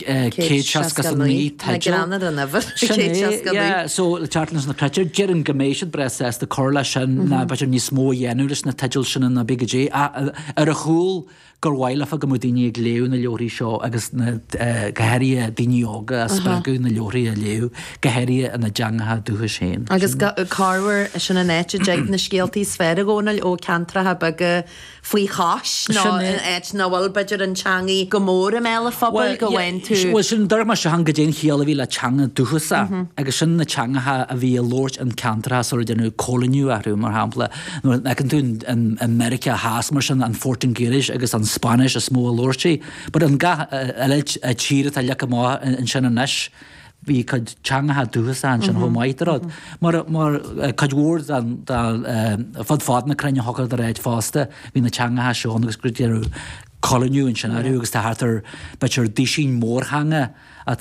169 teideal. Sin é, so le teacht leis na creidtear, déarfainn go mbeidh siad breá sásta a chur leis sin nó b'fhéidir níos mó a dhéanamh leis na teidil sin ina mbeidh go dté atá ar a chúl gur mhaith leofa go mbeadh daoine ag léamh na leabharthaí seo agus go háirithe daoine óga a spreagadh na leabharthaí a léamh, go háirithe ina dteangacha dúchais féin. Agus cármhar sin an áit a dtig na scéaltaí is fearr i gcónaí ó ceantracha beaga. faoi chois nó in áit ina bhfuil, b'fhéidir, an teangaidh go mór i mbéal an phobail, go bhfaigheann tú. Bhuel, sin díreach mar sin, chan go dté an chiall a bhí le teanga dúchasach, agus sin na teangacha a bhí á labhairt in ceantracha sular déanadh coilíniú orthu, mar shampla, nuair a fheiceann tú in Meiriceá Theas, mar sin, an Phortaingéilis agus an Spáinnis is mó a labhraítí, but in gach uile tír atá leagtha amach ansin anois, bhí a cuid teangacha dúchasacha ansin chomh maith de rud, mar cuid mhór den, fud fad na cruinne achan áit fosta, bhí na teangacha seo ann agus go dearnadh coilíniú ansin ariamh agus tá thart ar, b'fhéidir, dúisín mórtheanga,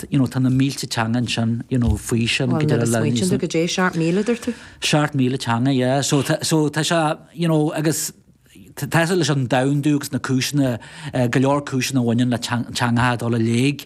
you know, tá na mílte teanga ansin, you know, faoi sin. Bhuel nuair a smaoitíonn tú go dté seacht míle, a deir tú? Seacht míle teanga, yeah, so tá, so tá sé, you know, agus Tá leis an domhandú agus na cúiseanna, go leor cúiseanna a bhaineann le teangacha a dhul i léig.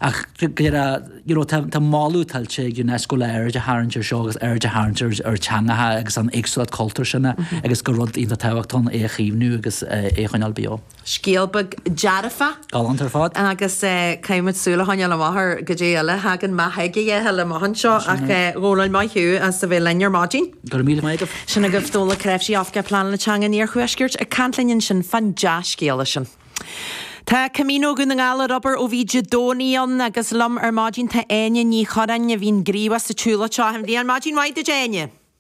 Ach tá moladh tuillte ag Unesco le aird a tharraingt ar seo agus aird a tharraingt ar theangacha agus an éagsúlacht cultúir sin agus gur rud iontach tábhachtach é a chaomhnú agus é a choinneáil beo. Scéal beag dearfach. Galánta ar fad. Agus caithfimid súil a choinneáil amach ar go dté eile a thagann amach ag a dhéithe amach anseo. Ach a Dhónaill, maith thú as a bheith linn ar maidin. Go raibh míle maith agat. Sin agaibh Dónall Ó Cnáimhsí, Oifigeach Pleanála Teanga an Iarthuaiscirt, ag caint linn ansin fán dea-scéala sin. Tá Camino Dhún na nGall ar obair ó bhí Dé Domhnaigh ann agus liom ar maidin tá Áine Ní Churráin a bhíonn gníomhach sa tsiúlóid seo achan bhliain. Maidin mhaith duit, Áine!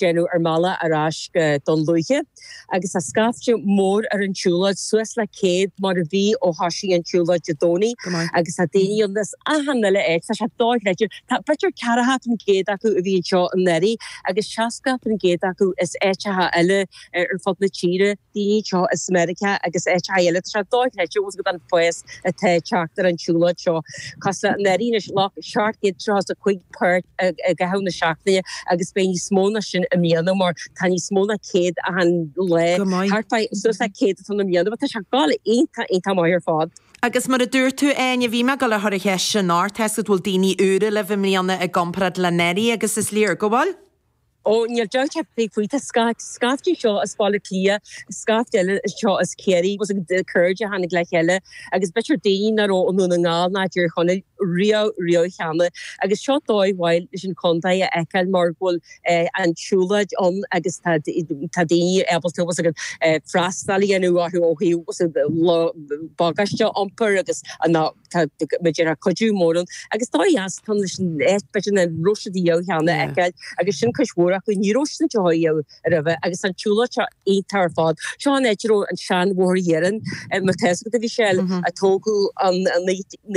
déanamh ár mbealach ar ais go Dún Lúiche agus tá scaifte mór ar an tsiúlóid, suas le 100 mar a bhí ó thoisigh an tsiúlóid Dé Domhnaigh agus tá daoine ann as achan uile áit, tá sé do-chreidte. Tá b'fhéidir 40% acu, a bhí anseo anuraidh agus 60% acu as áiteacha eile ar fud na tíre. daoine anseo as Meiriceá agus áit eile. Tá sé dochreidte os go don phoiz atá ag teacht ar an tsiúlóid seo. Tá sé anuraidh anois le thart ar tríocha is a cúig páirt i gcaitheamh na seachtaine agus beidh níos mó ná sin i mbliana mar tá níos mó ná céad achan lá, thart fá suas le céad atá ann i mbliana. Tá sé ag dul iontach iontach maith ar fad. Agus mar a dúirt tú Áine, bhí mé ag gabháil a chur an cheist sin ort, tá's agat an bhfuil daoine úra libh i mbliana i gcomparáid le anuraidh agus is léir go bhfuil. Ó, níl dabht ar bith faoi, tá scáth, scaifte anseo as Baile Átha Cliath, scaifte eile anseo as Ciarraí agus cairde a tháinig le chéile agus b'fhéidir daoine nach raibh i nDún na nGall ná i dTír Chonaill riamh, riamh cheana agus seo dóigh mhaith leis an Chontae a fheiceáil mar go bhfuil an tsiúlóid ann agus tá, tá daoine ábalta agus ag freastal a dhéanamh orthu ó thaobh bagáiste a iompar agus an. Tá muid ar ár gcuidiú mór ann agus dóigh dheas táim leis an éisc beirt ina róise de dheoidh cheana a fheiceáil agus sin cuid mhór acu. Ní raibh siad ann deoidh a dheoidh roimhe agus tá an tsiúlóid seo iontach ar fad. Seo an áit a raibh an seanbhóthar iarainn mar tá a fhios agat a bhí sé eile a tógadh i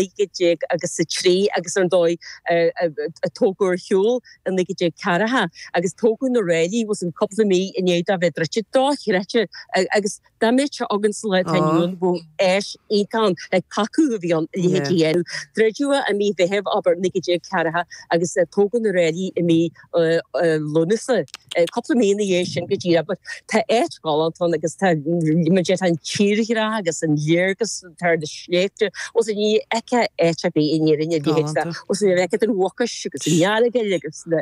1903 agus ar ndóigh a tógadh ar shiúl i 1940 agus tógadh na ráillí within cúpla mí i ndiaidh dó a bheith druidte. Drochreidte agus Dá mbeadh sé against the law tá Noel Bo Ash iontach ann ag tacú, a bhí ann i leithéidí Dhéanamh druideadh é i mí Mheithimh, abair, 1940 agus tógadh na ráillí i mí Lúnasa, cúpla mí ina dhiaidh sin go dtí abair. Tá áit ghalánta ann agus tá, mar deir, tá an tírdhreach agus an léargas thar na sléibhte agus ní fheicfeá áit ar bith in Éirinn a leithéid de agus ní fheicfeá an Mhucais agus an Earagail agus na.